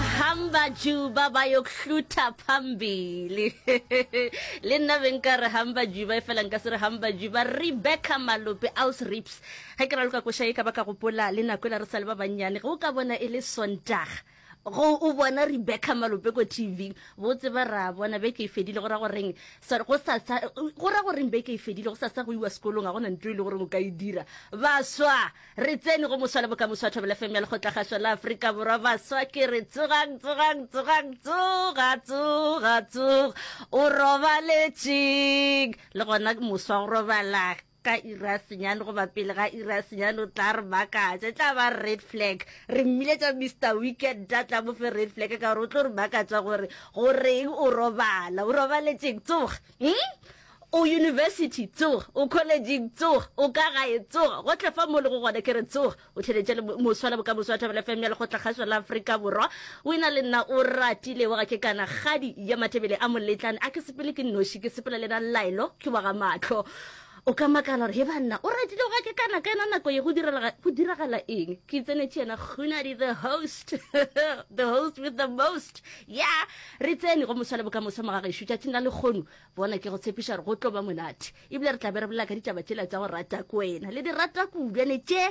Hamba juba bayokuhlutha phambili. Le nna be nka re hamba juba e fela nka se re hamba juba. Rebecca Malope aus Rips. Ge ke raloka koša e ka ba ka gopola le nako e la re sa le ba bannyane. Ge o ka bona e le Sontaga go o bona Rebecca Malope ko TV bo tseba ra bona beke e fedile go ra goreng sorry go sa go ra goreng beke e fedile go sa sa go iwa sekolong ga gona ntwe e le gore o ka e dira baswa Re tsene go moswa le bokamoso wa Thobela FM ya Lekgotlagaswa la Afrika Borwa. Baswa ke re tsogang, tsogang, tsogang, tsoga, tsoga, tsoga. O robaletšeng. Le gona moswa go robala ka ira senyane goba pele ga ira senyane o tla re makatša e tla ba red flag re mmiletša mr weekend a tla mofe red flag ka gore o tlo re makatša gore goreng o robala o robaletšeng tsoga hmm? O yunibesithi, tsoga. O kholejing, tsoga. O ka gae, tsoga. Gohle fao mo o lego gona, ke re tsoga. O theeletše le moswa le bokamoso wa Thobela FM ya Lekgotlakgašo la Afrika Borwa. O ena le nna, o ratile. Wa ga ke kana, kgadi ya Matebele a Moletlane. A ke sepele ke nnoši, ke sepela le ena Llaelo, ke wa ga Mahlo. O ka makala gore, He banna, o ratile, o ga ke kana, ka yena nako ye go direla, go diragala eng? Ke itsenetše yena Kgunadi the host, the host with the most. Yeah! Re tsene go moswa le bokamoso mo ga gešo, tšatšing la lekgono. bona ke go tshepiša gore go tlo ba monate ebile re tla be re bolela ka ditaba tšela tša go rata ko wena le di rata kubjane tše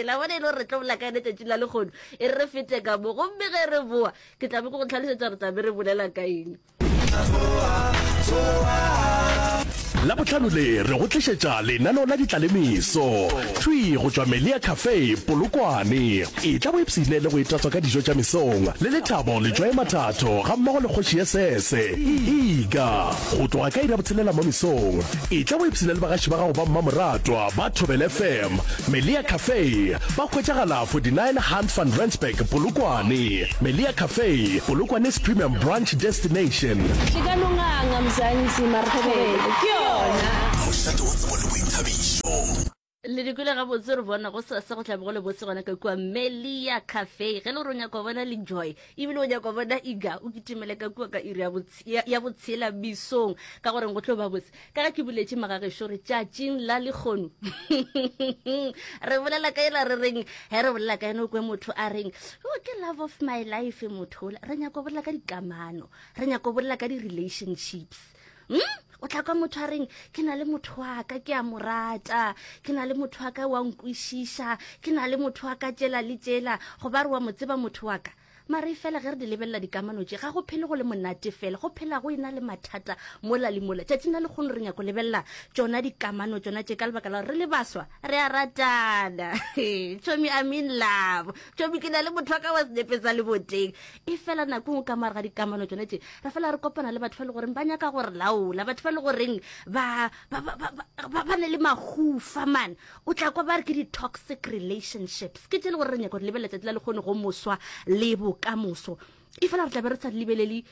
la bona e le gore re tlo bolela ka yone tšatši la lekgono e re fete ka mo gomme ge re boa ke tla be ke go tlhalosetsa gore tla be re bolela ka eng la botlhano le re go tlišetša lenaneo la ditlalemiso thwi go tšwa melia cafe polokwane Etla o ipshine le go itatswa ka dijo tša mesong, le lethabo le tšwaye mathato gammogo le kgoši ye sese. Ika, go tloga ka iri ya botshelela mo mesong, etla o ipshine le bagaši ba gago ba mmamoratwa ba Thobela FM, Melia Cafe, ba hwetšagala 49 Hunt van Rensburg, Polokwane. Melia Cafe, Polokwane's premium brunch destination. Tlikalonganga, Mzansi, Marhobele, ke yona. Mošate wa tsebo le boithabišo. le di kwele gabotse re bona go sasa go tlabe go le botse gona ka kua melia cafe ge le gore o nyaka bona le joy ebile o nyaka bona iga o kitimele ka kua ka iri ya botshela bisong ka goreng go tlo ba botse ka ga ke buletse magagešo re tšatšing la lekgono re bolela ka ela re reng ge re bolela ka ene o kwe motho a reng o oh, ke love of my life motho ola re nyako bolela ka dikamano re nyako bolela ka di-relationships hmm? o tla kwa motho a reng ke na le motho wa ka ke a mo rata ke na le motho wa ka wa nkwešiša ke na le motho wa ka tšela le tšela go ba re wa mo tseba motho wa ka mare e fela ge re di lebelela dikamano tše ga go phele go le monate fela go phela go e na le mathata mola le mola tšatši na le kgone re nyako lebelela tsona dikamano tsona tše ka lebaka la gore re le baswa re a ratana tšomi i mean love tšomi ke na le motho wa ka wa senepe sa leboteng e fela nako ngwe ka moare ga dikamano tsone tse re fela re kopana le batho ba le goreng ba nyaka gore laola batho ba le goreng ba ne le mahufa mane o tla kwa ba re ke di-toxic relationships ke tse e le gore re nyaka gore lebelela tsatsi la le kgone go moswa le bokamoso e fela re tlabe re sa di lebelele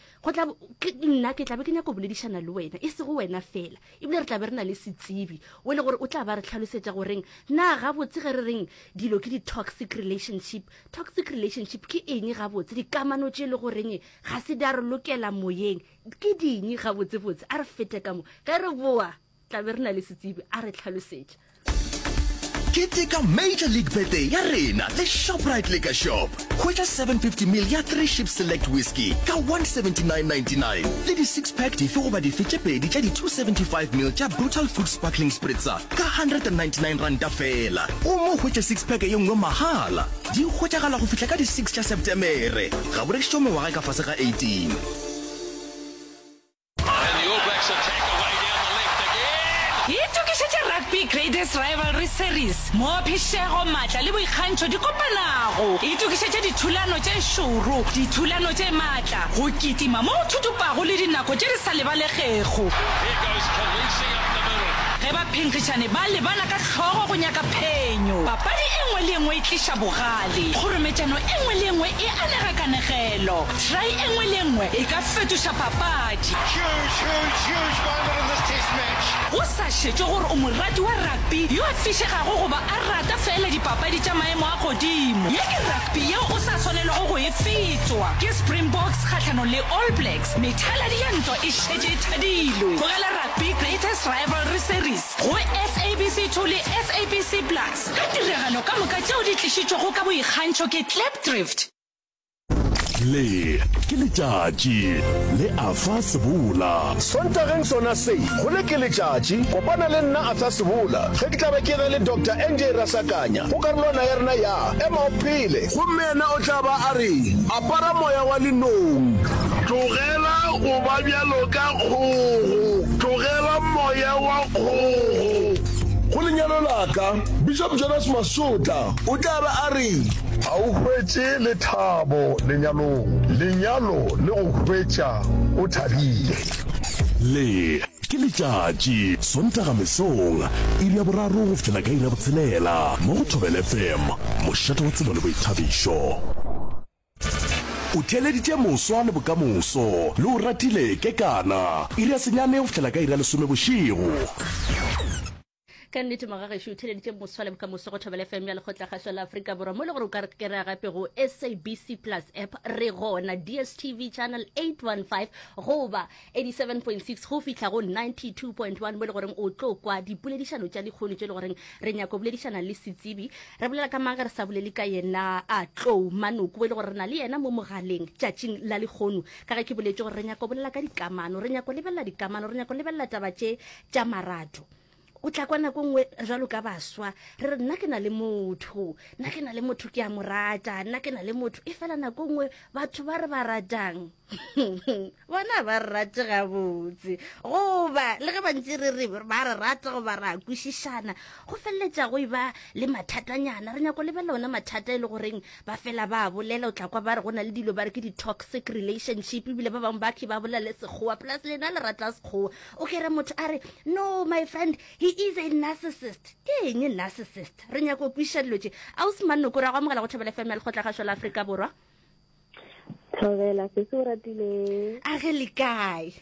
nna ke tlabe ke nyako boledišana le wena e sego wena fela ebile re tlabe re na le setsibi o e le gore o tla ba re tlhalosetsa goreng na gabotse ge re reng dilo ke di-toxic relationship Toxic relationship ke eng gabotse? Dikamano tše e le goreng ga se di a re lokela moyeng ke ding gabotsebotse? A re fete ka mo, ge re boa tla be re na le setsebi a re tlhalosetša. Keteka Major League Birthday ya rena le Shoprite Liquor Shop. Hwetša 750 ml ya Three Ships Select Whisky ka 179.99 le di-six-pack dife goba dife tše pedi tša di-275 ml tša Brutal Food Sparkling Spritzer Ka R199 feela o mo hwetše six-pack ye nngwe mahala. Di hwetšagala go fihla ka di six tša Septemere. Ga bo rekišwe mengwaga e ka fase ga 18. Itokišetše Rugby Graders Rivalry Series mo phišego, matla le boikgantšho di kopanago. Itokišetše dithulano tše šoro, dithulano tše matla, go kitima mo go thutupago le dinako tše di sa lebalegego. Ge baphenkgišani ba lebana ka hlogo go nyaka phenyo, papadi e nngwe le e nngwe e tliša bogale. Kgorometšano e nngwe le e nngwe e anega kanegelo. Try e nngwe le e nngwe e ka fetoša papadi. Huge, huge, huge moment in this Test match. Go sa šetšwe gore o morati wa rugby yo a fišegago goba a rata feela dipapadi tša maemo a godimo, ye ke rugby yeo o sa swanelego go e fetšwa. Ke Springboks kgahlanong le All Blacks, methaladi ya ntwa e šetše e thadilwe. Tlogela rugby. Be Greatest Rivalry Series go SABC 2 le SABC Plus ka tiragalo ka moka tšeo di tlišitšwego ka boikgantšho ke Klipdrift. Le ke letšatši le Arthur Sebola. Sontageng sona se, go le ke letšatši. Kopana le nna Arthur Sebola ge ke tla be ke ge le Doctor NJ Rasakanya go karolwana ya rena ya Ema o Phele. Gomme yena o tla ba a re. Para moya wa linong. Tlogela go ba bjalo ka kgogo. Tlogela moya wa kgogo. Go lenyalo la ka. Bishop Jonas Masotla o tla be a re. A o hwetše lethabo lenyalong. Lenyalo le go hwetša o thabile. Le. Ke letšatši, Sontaga mesong, iri ya boraro go fihlela ka iri ya botshelela, mo go Thobela FM, mošate wa tsebo le boithabišo. O theeleditše moswa le bokamoso, le o ratile, Kekana, iri ya senyane go fihlela ka iri ya lesome bošego. ka nnete magagešo o theleditše moswa le bokamoso go thobela fm ya lekgotlakgašo la aforika borwa mo le gore o ka kera gape go sabc plus app re gona dstv channel 815 goba 87.6 go fitlha go 92.1 mo le goreng o tlo kwa dipoledišano tša dikgono tše e le goreng re nyako boledišana le setsebi re bolela ka maga re sa bolele ka yena a tlou manoko e le gore re na le yena mo mogaleng tšatšing la lekgono ka ge ke boletše gore re nyako bolela ka dikamano re nyako lebelela dikamano re nyako lebelela taba tše tša marato. O tla kwa nako nngwe jalo ka baswa re re nna ke na le motho nna ke na le motho ke a mo rata nna ke na le motho e fela nako nngwe batho ba re ba ratang bona ba re rate gabotse goba le ge bantse re re ba re rata goba ra kwešišana go feleletša go e ba le mathatanyana re nyako lebelela ona mathata e le goreng ba fela ba bolela o tla kwa ba re go na le dilo ba re ke di-toxic relationship ebile ba bangwe ba ke ba bolela le sekgowa plus lena le rata sekgowa o kere motho a re no my friend he is a narcissist ke eng narcissist re nyako o kwiša dilo tše a o semanoko ra go amogela go thobela fm ya lekgotla gašo la aforika borwa thobela se se o ratileng a ge le kae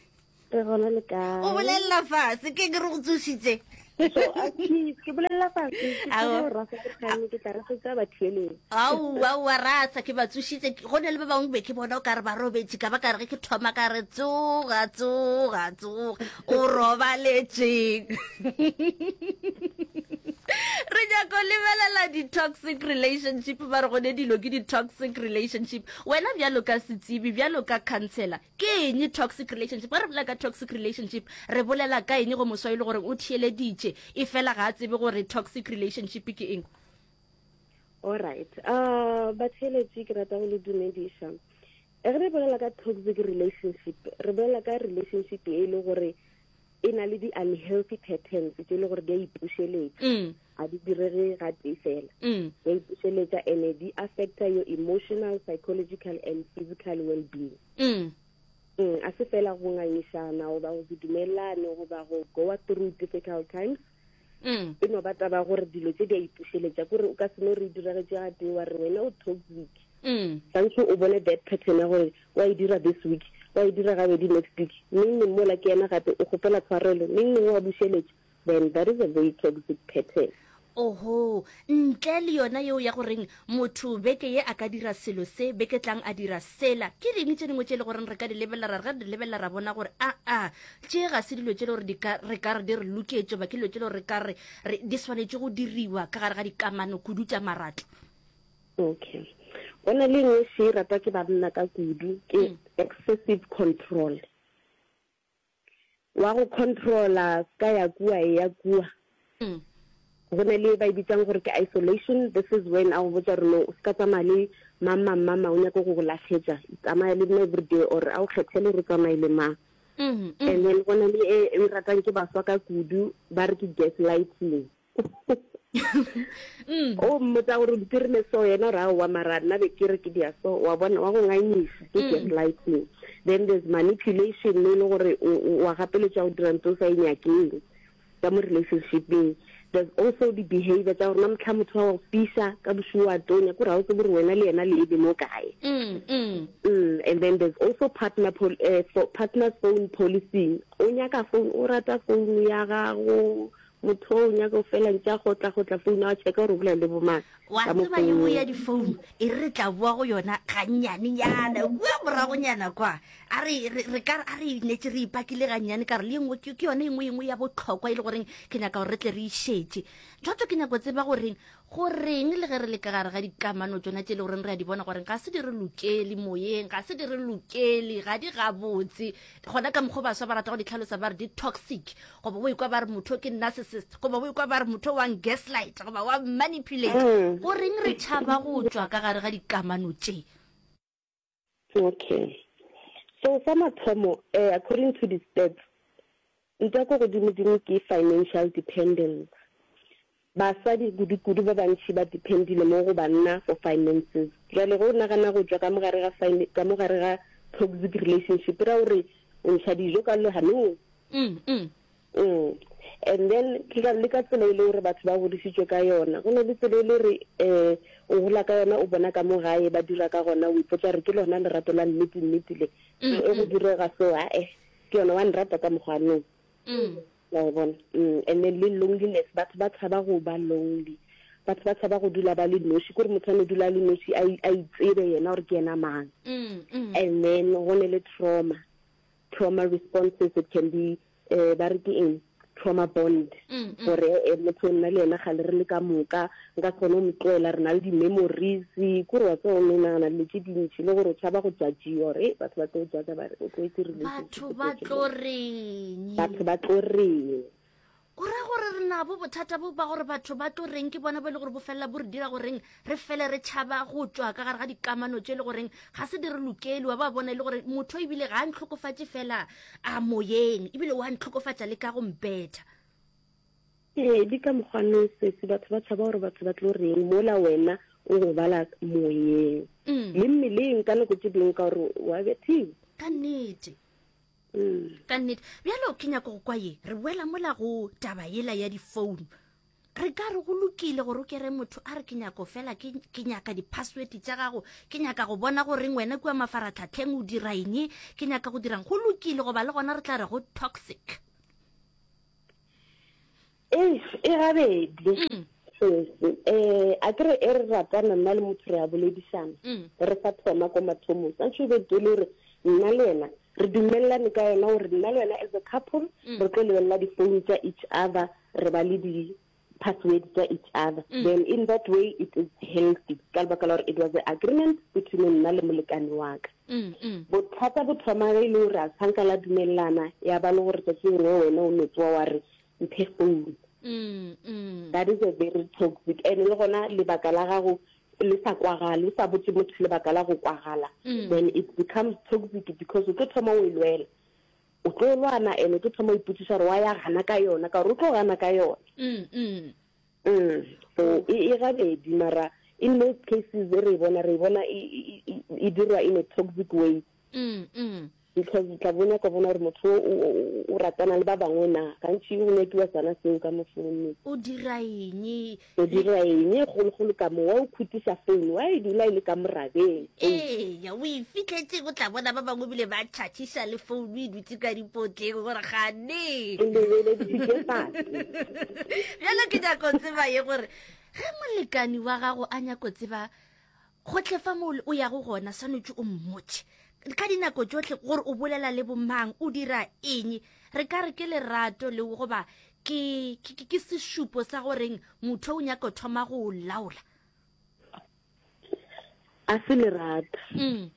re gona le kae o bolelela fase ke ke re go tsošitse so athi ke bolelela fa ke Ao. tlo rasa ke kganne ke tla rasetsa batho eleng aowa owa rasa ke ba tsošitse Ke- go ne le ba bangwe be ke bona o kare ba robetše ka ba ka re ge ke thoma ka re tsoga tsoga tsoga o robaletseng re nyako lebelela di-toxic relationship ba re gone dilo ke di-toxic relationship wena bjalo ka setsebi bjalo ka councellor Ke eng toxic relationship? Ge re bolela ka toxic relationship, re bolela ka eng go moswa e le gore o theeleditše e fela ga a tsebe gore toxic relationship ke eng? Alright. Uh, ah, batheeletši ke rata go le dumediša. Ge re bolela ka toxic relationship, re bolela ka relationship e le gore e na le di-unhealthy patterns tse e le gore di a ipušeletša mm. a di direge ga tee fela mm. di a ipušeletša and-e di affecta your emotional psychological and physical well being mm. a se fela go ngangišana goba go se dumelelane goba go goa through difficult times mm. e no ba taba gore dilo tse di a ipušeletša kore o ka seno re diragetše ga tee wa re wena o toxic mm. santse o bone that pattern ya gore wa e dira this week wa e dira gabedi next week neng neng mola ke ena gape o kgopela tshwarelo neng neng wa bušeletša then that is a very toxic pattern oho ntle le yona yeo ya goreng Motho beke ye a ka dira selo se, beke tlang a dira sela. Ke ding tše dingwe tše e le goreng re ka di lebelela ra re ga re di lebelela ra bona gore aa, tše ga se dilo tše e le gore di ka re ka re di re loketše goba ke dilo tše e le gore re ka re re di swanetše go diriwa ka gare ga dikamano kudu tša marato. Okay. Go na le e nngwe še e ratwa ke banna ka kudu ke excessive control. wa go controla ska ya kua e ya kua mm. go na le ba e bitsang gore ke isolation this is when a go botsa gore no o ska tsamaya le mang mang mang mang o nyaka go go latlhetsa tsamaya le nna everyday or a o kgethele re tsamaye le mang mm-hmm, mm-hmm. and then go na le e, e ratang ke baswa ka kudu ba re ke gas lighting Mm. o mmotsa gore di dirile so yena ra wa mara nna be ke re ke dia so wa bona wa go nganyisa ke mm. gaslighting then there's manipulation mo e le gore wa gapeletša go dira ntse o sa e nyakeng ka mo relationshipeng there's also the behavior tsa gore na motlha motho wa go fisa ka bosigo wa tonya ko ra o tsebore wena le yena le ebe mo kae mm, mm. and then there's also partner pol uh, partner phone policing o nyaka phone o rata phone ya gago Motho o nyaka go fela ntša go tla go tla founa wa tšheka gore o bolela le bo mang. Wa tseba ye nngwe ya difounu e re re tla boa go yona gannyanenyana, kua moragonyana kwa. A re, re, re ka re, a re netše re ipakile gannyane ka gore le ye nngwe ke, ke yona e nngwe, ye nngwe ya bohlokwa e le goreng ke nyaka gore re tle re e šetše. Tšhoto ke nyako tseba goreng Go reng le ge re le ka gare ga dikamano tšona tše e le goreng re a di bona gore ga se di re lokele moyeng, ga se di re lokele, ga di gabotse, gona ka mokgwa o baswa ba rata go di tlhalosa ba re di toxic, goba o ikwa ba re motho ke narcissist, goba o ikwa ba re motho wa gaslight, goba wa manipulate. Go reng re tšhaba go tšwa ka gare ga dikamano tše? Okay. So sa mathomo, eh, according to the stats, nta ko godimo-dimo ke financial dependence. Basadi kudu-kudu ba bantši ba dependile mo go banna for finances. Jwale go nagana go tšwa ka mogare ga fine, ka mogare ga toxic relationship, ra gore o ntsha dijo ka lehanong. Mm, mm. Mm. And then ke ka le ka tsela e le gore batho ba godisitswe ka yona go ne le tsela e le gore um o gola ka yona o bona ka mo gae ba dira ka gona o ipotsa gore ke lona lerato la nnete nnete le mm, e go mm. direga so ae ke yona wa nrata ka mokgwa nong wa e bona and then le loneliness batho ba tshaba go ba lonely batho ba tshaba go dula ba le noši kore motho a ne dula a le noši a itsebe yena gore ke yena mang and then go ne le trauma trauma responses it can be eh ba re ke eng trauma bond mm, mm. gore eh, motho o nna le ena ga le re le ka moka nka se kgone go mo tloela re na le di-memories kore wa tseo ne nagana dilo tse dintšhi le gore o tšhaba go jajio gore eh, batho ba tlo jaja ba re o tloetse batho ba tlo reng batho ba tlo reng o ra gore re nabo bothata bo ba gore batho ba tlo reng ke bona bo e le gore bo felela bo re dira goreng re fele re tšhaba go tswa ka gare ga dikamano tše e le goreng ga se di re lokele wa ba bona e le gore motho ebile ga a ntlhokofatše fela a moyeng ebile wa ntlhokofatša le ka go mpetha ee di ka mokgwane sesi batho ba tšhaba gore batho ba tlo reng mola wena o go bala moyeng mm. le mmeleng ka nako tše dingwe ka gore wa bethiwa ka nnete ka nnete bjalo ke nyako go kwa ye re boela mola go taba yela ya difounu re ka re go lokile gore o kere motho a re ke nyako fela ke nyaka di-password tša gago ke nyaka go bona goreng wena kua mafaratlhatlheng o dira eng ke nyaka go dirang go lokile goba le gona re tla re go toxic Eish, e gabedi. Mm. Sesi, eh, a ke re e re ratana nna le motho re a boledisana. Mm. Re sa thoma ko mathomong. Sa ntho e be tole gore nna le wena re dumelelane ka yona gore nna le wena as a couple Mm. re tlo lebelela di-phone tsa each other re ba le di-password tsa each other Mm. then in that way it is healthy ka lebaka la gore it was the agreement between nna le molekane wa ka Mm. Mm. bothata bo thoma ge e le gore a tshanka la dumelelana ya ba le gore tsatsi lengwe wena o metsoa wa re mphe phone mm, mm. that is a very toxic and le gona lebaka la gago le sa kwagale o sa botse motho lebaka la go kwagala mm. then it becomes toxic because o tlo thoma o e lwela o tlo lwana and o tlo thoma o ipotsiša gore wa ya gana ka yona ka gore o tlo gana ka yona mm, mm. mm. so e, e gabedi mara in most cases e re e bona re e bona e, e, e dirwa in a toxic way mm, mm. because o tla bona ka bona gore motho o ratana le ba bangwe na gantši o nyakiwa sana seo ka mo founung o dira eng o dira eng e kgologolo ka mo wa o khutisa founu wa e dula e le ka morabeng eya o e fitlhetse o tla bona ba bangwe bile ba tšhatšhisa le founu e dutse ka dipotleng gore gane bjalo ke nyako tseba ye gore ge molekani wa gago a nyako tseba gohle fa mole o yago gona swanetše o mmotše ka dinako tšohle gore o bolela le bomang o dira eng re ka re ke lerato le goba ke ke sešupo sa goreng motho o nyaka thoma go laola a se lerato mm.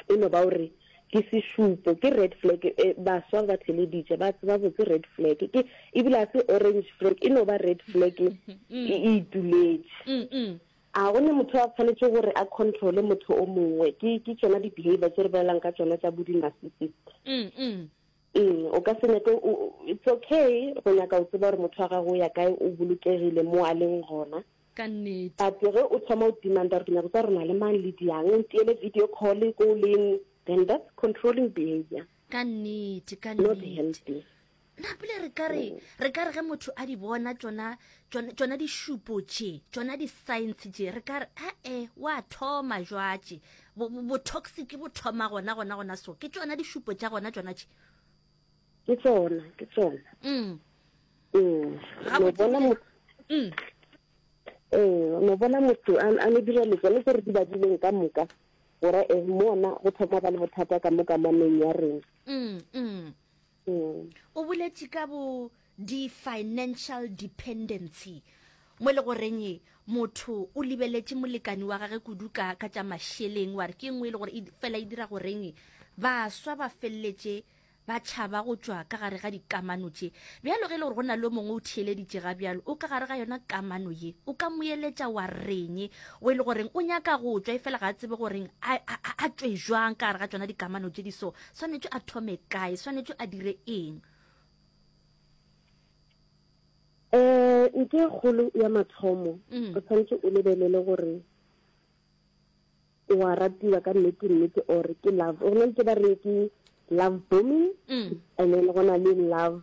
E no ba o re, Ke sešupo, ke red flag. E, baswa ba theleditše, ba tseba botse red flag. Ke, ebile a se orange flag, e no ba red flag e e ituletše. A go ne motho a tshwanetše gore a controle motho o mongwe? Ke, ke tšona di-behavior tše re bolelang ka tšona tša bodi-narcissist. Mm, o ka se nyake, o, it's okay go nyaka go tseba gore motho wa gago o ya kae, o bolokegile mo a leng gona. ka nnete. But ge o thoma o demanda gore ke nyako tsa gore na le mang le diang, o ntiele video call ko o leng, then that's controlling behavior. Ka nnete, ka Not nnete. healthy. Na pele re ka re, re ka re ge motho a di bona tšona, tšona, tšona dišupo tše, tšona di-signs tše, re ka re, a-e, wa thoma jwatše. Bo, bo, bo-toxic bo thoma gona, gona, gona so. Ke tšona dišupo tša gona tšona tše. ke tsona ke tsona mm. ee no bona motho mm. ee no bona motho a ne dira letsone tse re di badileng ka moka gore e eh, mona go thoma ba le bothata ka moka maneng ya rena mm, mm. mm. o boletse ka bo di-financial dependency mo le goreng e, motho o lebeletse molekani wa gage kudu ka ka tša mašeleng wa re ke nngwe e le gore e fela e dira goreng e, baswa ba feleletse Ba tšhaba go tšwa ka gare ga dikamano tše. Bjalo ge e le gore go na le yo mongwe o theeleditše ga bjalo o ka gare ga yona kamano ye, o ka mo eletša wa reng? Wo e le goreng o nyaka go tšwa efela ga a tsebe goreng a, a, a, a tšwe jwang ka gare ga tšona dikamano tše di so. Swanetše a thome kae? Swanetše a dire eng? Um ntho e kgolo ya mathomo, o tshwanetse o lebelele gore. o a ratiwa ka nnete nnete or ke love go na le ke ba reng ke love booming mm. and then go na le love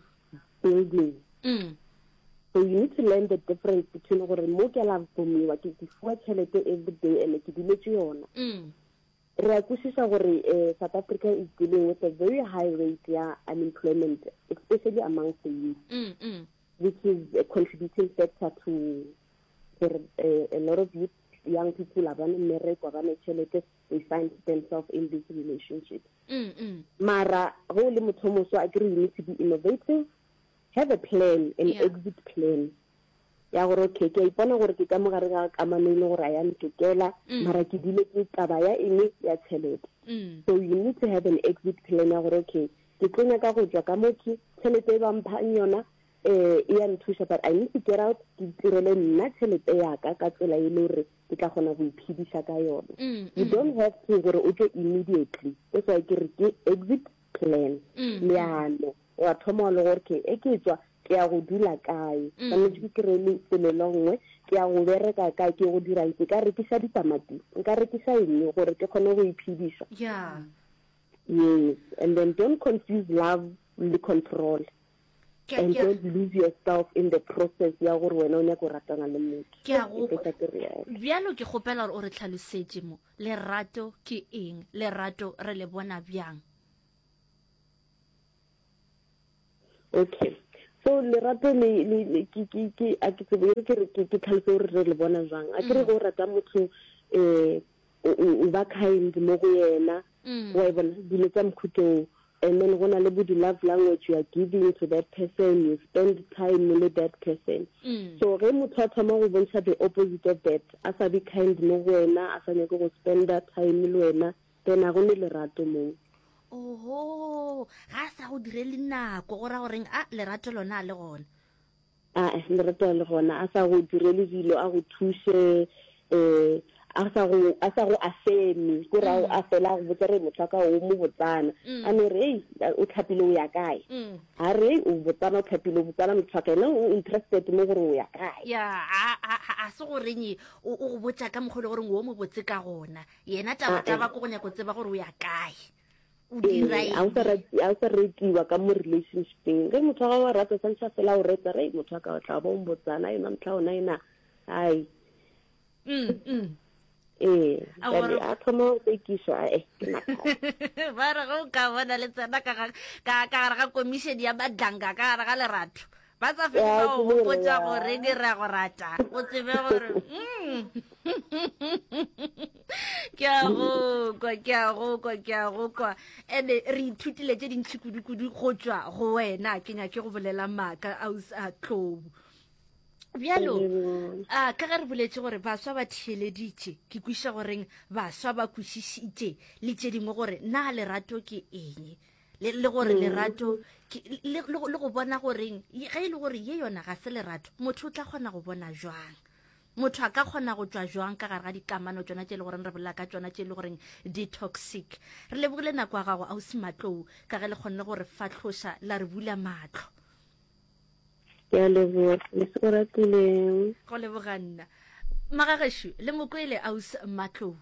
building mm. so you need to learn the difference between gore mo ke love boomiwa ke ke fuwa tšhelete every day and ke diletse yona mm. re a kwešiša gore um south africa is dealing with a very high rate ya unemployment especially among the youth mm, mm. which is a contributing factor to gore uh, a lot of youth young people ba ne mmereko ba ne tšhelete they find themselves in this relationship mm, mm. mara go le motho moso a kere you need to be innovative have a plan an yeah. exit plan ya gore okay ke a ipona gore ke ka mo gare ga kamano e le gore a ya ntokela mm. mara ke dile ke taba ya eng ya tšhelete mm. so you need to have an exit plan ya gore okay ke tlo nyaka go tswa ka mo ke tšhelete e bampha yona Ee, e ya nthuša, but I need to get out ke itirele nna tšhelete yaka ka tsela e le gore ke tla kgona go iphediša ka yona. Mm, mm. You don't have to gore o tlo immediately. That's why ke re ke exit plan, mm, leano. Wa thoma le gore ke e ke tswa ke ya go dula kae. Tlametse ke kry-e lefelo le nngwe, ke ya go bereka kae, ke go dira ke ka rekisa ditamati, nka rekisa eng gore ke kgone go iphediša. Yeah. Yes, and then don't confuse love le control. and don't lose yourself in the process ya gore wena o nyaka go ratana le motho ke a go bjalo ke kgopela gore o re tlhalosetše mo lerato ke eng lerato re le bona bjang okay so lerato le le le ke ke ke a ke tsebe ke re ke tlhalose gore re le bona jwang a ke re mm. go rata motho eh o ba kind mo go yena mm. wa e bona dilo tsa mokhutlong And then go na le bo di love language, you are giving to that person, you spend time le that person. So ge motho a thoma go bontšha the opposite of that, a sa be kind mo go wena, a sa nyake go spender time le wena, then a go ne lerato moo. Oho, ga a sa go direle nako, go ra goreng? A, lerato lona a le gona. Ae, Lerato a le gona, a sa go direle dilo, a go thuše, um a sa go a sa go afeme ko ra mm. a fela a go botsa re motho ka o mo botsana mm. a no re ei o tlhapile o ya kae mm. a re ei o botsana o tlhapile o botsana motho ka ene o interested mo gore o ya kae ya a se go renye o go botsa ka mogolo gore o mo botse ka gona yena taba taba ko go nyako tseba gore o ya kae o dira eng? A o sa retiwa ka mo relationshipeng. Ge motho wa gago wa rata, santšha fela o reta. Re motho wa ka o tla bo mbotsana, yona motho ona ena. Hai. Mm, mm. Ee, a thoma go tsekišwa a e ke mathata. Ba re go ka bona le tsena ka gare ga komišene ya madlanga ka gare ga lerato. Ba sa fele ba go gopotša gore di ra go rata, o tsebe gore ke a go kwa, ke a go kwa, ke a go kwa. Ene re ithutile tše dintšhi kudu-kudu go tšwa go wena, ke nyake go bolela maaka a usa tlou. Bjalo, a ka ge re boletše gore baswa ba theeleditše, ke kwiša goreng baswa ba kwišišitše le tše dingwe gore na lerato ke eng. le le gore mm. lerato le go bona goreng ge e le gore ye yona ga se lerato motho o tla kgona go bona jwang motho a ka kgona go tswa jwang ka gare ga dikamano tsona tse e le goreng re bolela ka tsona tse e le goreng di-toxic re lebogile nako ya gago ausi matlou ka ge le kgonne gore fatlhosa la re bula matlho ke a leboga mose o ratileng go leboga nna magageshu le mokwele aus matlou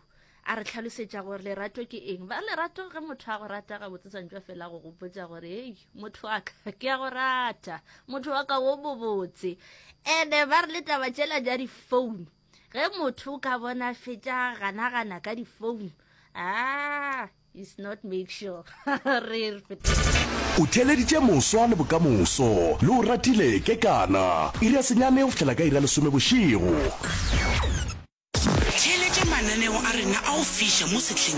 a re tlhalosetša gore lerato ke eng ba lerato ge motho a go rata ga botsetsantšwa fela go gopotsa gore ei motho wa ka ke ya go rata motho wa ka wo bobotse ene ba re le taba tšela ja difounu ge motho ka bona fetša ganagana ka difounu ah is not make sure re o theleditše moswa le bokamoso le o ratile ke kana iri ya senyane go fitlhela ka iri ya lesome bošego theeletše mananeo a rena a go fiša mo sehleng